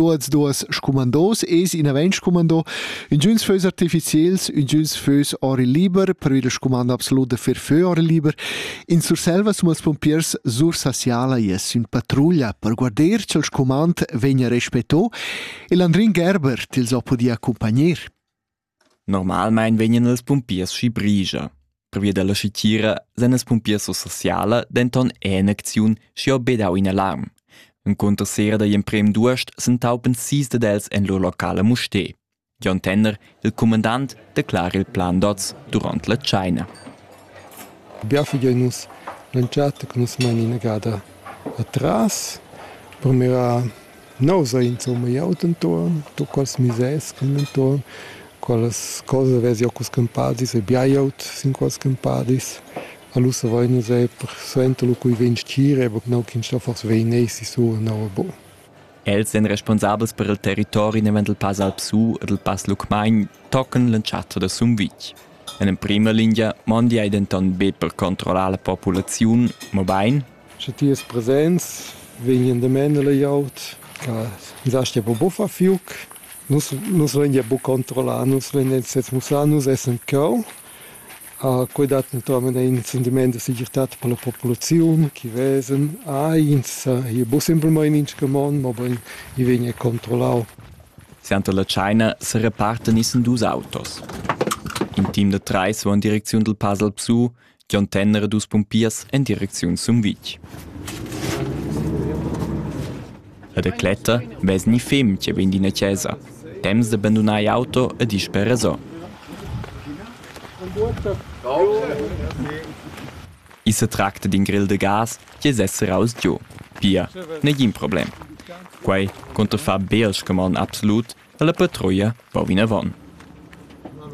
tuots duos scumandos es inavant scumando ingiüns fös artificiels ingiüns fös or il liber per il scumando absolut da fer fö or il liber in Surselva sun els pompiers Sursasiala es in patrulla per guarder cha'l scumand vegna respetto e Landrin Gerber tils ho pudi accumpagner Normalmein vegnan els pumpiers schi brigia. Pervia dalla schitira san els pumpiers Sursociala denton en acziun schi ho bedau in alarm. Encunter sera dagli emprem d'uost s'entaupen sis dad els en lur locala Mustè. Jon Tenner, il cumandant, declara il plan d'oz durant la tscheina. Bia figein nus l'entschatta che nus mein inagada atras. Purmira Neu sa insomma jeu denton tuccas misers cun entuorn quellas cosas vess jeu cun scumpadis e biaglieud sin quels scumpadis. Allura vein nus era persuenter lu quei ventgir, aber gnanc in sto forsa vein essi sura nova. Els ein responsabels per il territori naven dil Pass Alpsu e dil Pass Lucmagn tocan l'entschatta da Sumvitg. En emprema lingia mondi ei denton be per controllar la populaziun, mobein Sche ti es presents, vegnan damen la glieud che nus astgia buca buffar fiuc. Nus, nus lain gia buca controllar, nus lain semussar, nus essan cheu. Quei dat naturalmein in sentiment da segirtad per la populaziun che vesan, ah, ins hi buca simplmein in scamond, mobein i vegn er controllau. Suenter la tscheina serepartan issen dus autos. In team da treis va en direcziun dal Pasal Psu Gion Tenner e dus pumpiers en direcziun Sumvitg. E da cletta vess ni fem che vegn d'ina chesa, temps da bandunar auto e disper resò. I se tracta d'in grill de gas che sessera aus Dio. Pia, negin problem. Quei conta far bel scamon absolut la patruia va vinavon.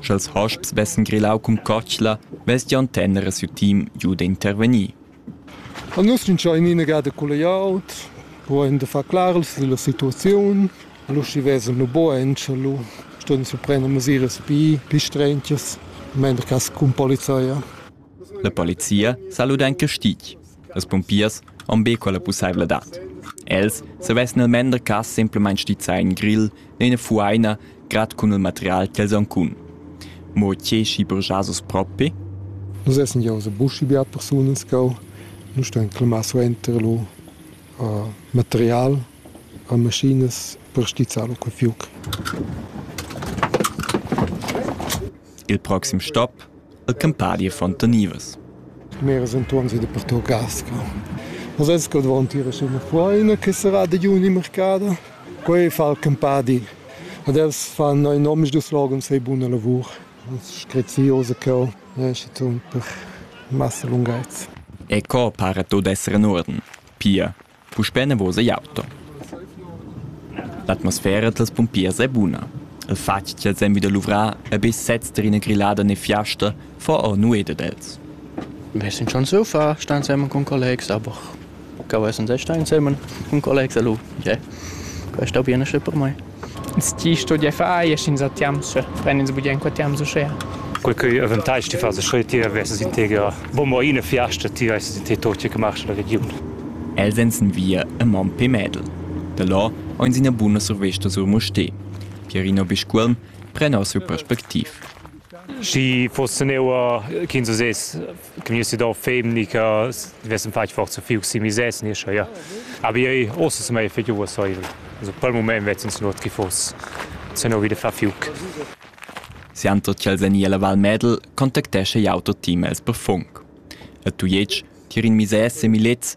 Sch'els hosps vessen grillau cun cotschla, vess Gion Tenner e siu team giu d'intervegnir. A nus vintscha in inegada culla glieud, pudein da far clars dalla situaziun. Allura schi vesan lu bugen, sche lu ston ins prender mesiras pi, pi strentias, mender cass cun polizia. La polizia sa luda en castig. Las pumpiers han be quella pussaivladad. Els savessan il mender cas semplamain stizzar in grill e ina fuaina grad cun il material ch'els han cun. Mo tge schi burgiasos propi? Nus essen ja usse buschi beat persunas cau. Nu stan clamà suenter lo uh, material a maschinas per stizzar lo quel fiuc. il proxim stop el Campadi e Fontanivas. Meras enturns ed pertut Gasca. Nus esco dvantir suna fuaina che sarà da juni mercada. Quei fa il Campadi. Ad els fan ein omisdus slogans sei buna lavur. Screziose cheu, per massa lunghezza. E co pare tot essere in orden? Pia, Puspè enavos igl auto. L'atmosfera dals pumpiers è buna. Il fatg ch'els èn vi da luvrar e be sezs tar ina grillada ne fiasta fa or nuet ad els. Wir sind schon so far, stan zusammen con collegs, aber kann man sehen, stan zusammen con collegs, also, yeah. Questo viene schon per me. Tgi studia far eir sainza tiamsa? Pren ins bugen qua tiams uschea? Quel cheu avantage ti fas scheu ti vesses in teger bomber ina fiasta ti vesses in te tot che marsch la regiun. Els ein sin via a Mompé Mädel. Da là ein ina buna survesta sur Mustér. Pierino Biscuolm pren our siu perspectiv. Schi foss neuer ch'ins uss Gni si do femni che vessem fatg forza fiug si misès ni scha ja. Aber io ossa se mai fetg uossaivel. Also pel mument vezzin sun ot chi foss se no vide fa fiug. Sianto ch'el sen illa Val Medel contactescha jau tot team els per funk. A Tujetsch, tier in misès e milets,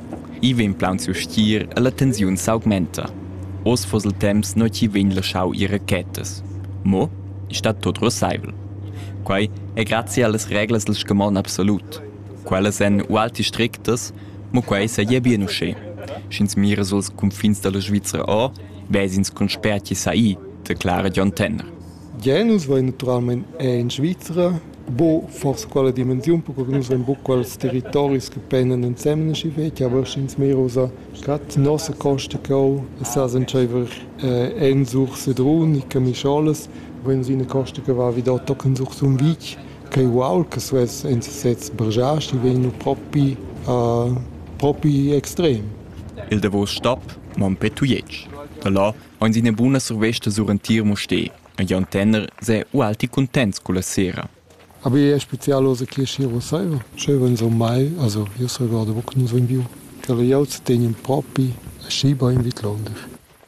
I vegn plaunsiu stgir e la tensiun s'augmenta. Oz fuss il temps nua ch'i vegn laschau ir rachetas. Mo ei stat tut ruasseivel. Quei ei grazia allas reglas dil scamon absolut. Quellas ein ualti strictas, mo quei seigi bien uschè. Sch'ins mira suls cunfins dalla Svizra ora, ves'ins con spert chi sai, declara Dion Tenner. Gia nus vein naturalmein era en Svizra buca forsa quella dimensiun, perque che nus vein buca quels territoris che pendan ensemen aschi fetg, aber sch'ins mirusa gerade nossa costa cheu e sa s'entscheiver eh, Ensur Sedrun e Camischolas, vein nus ina costa che va vi da tochen sur Sumvitg, ch'ei uaul che suess en sesez bergiasti, vegn propi eh, propi extrem. Il davos stap Mompé Tujetsch. Da là Aunz üna buna survesta sur entir Mustér. E Jon Tenner s'è ualti cuntents culla sera. Aber è spezial oz che Schiro saiva? Sch'eu vegn sur mai, also io s'regorda mo che nus vain viu. Quel jau zu tegnen propi aschi bain vidlonder.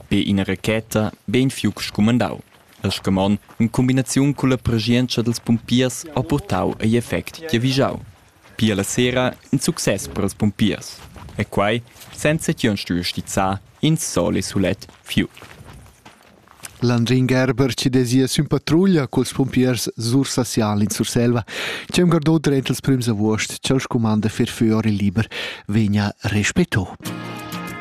Be ina racheta, bein fiuc scumandau. El scamon, in cumbinaziun culla preschientscha dels pumpiers, ha purtau egl effect giavischau. Pia la sera in success per ils pumpiers, e quai senza ch'jeu stuiu stizzar in sol e sulet fiug. Landrin Gerber ci desia sün patruglia culs pumpiers Sursasial in Surselva, che un gardò drent els prüms avuost ch'el scumanda fer föor il liber vegna respetto.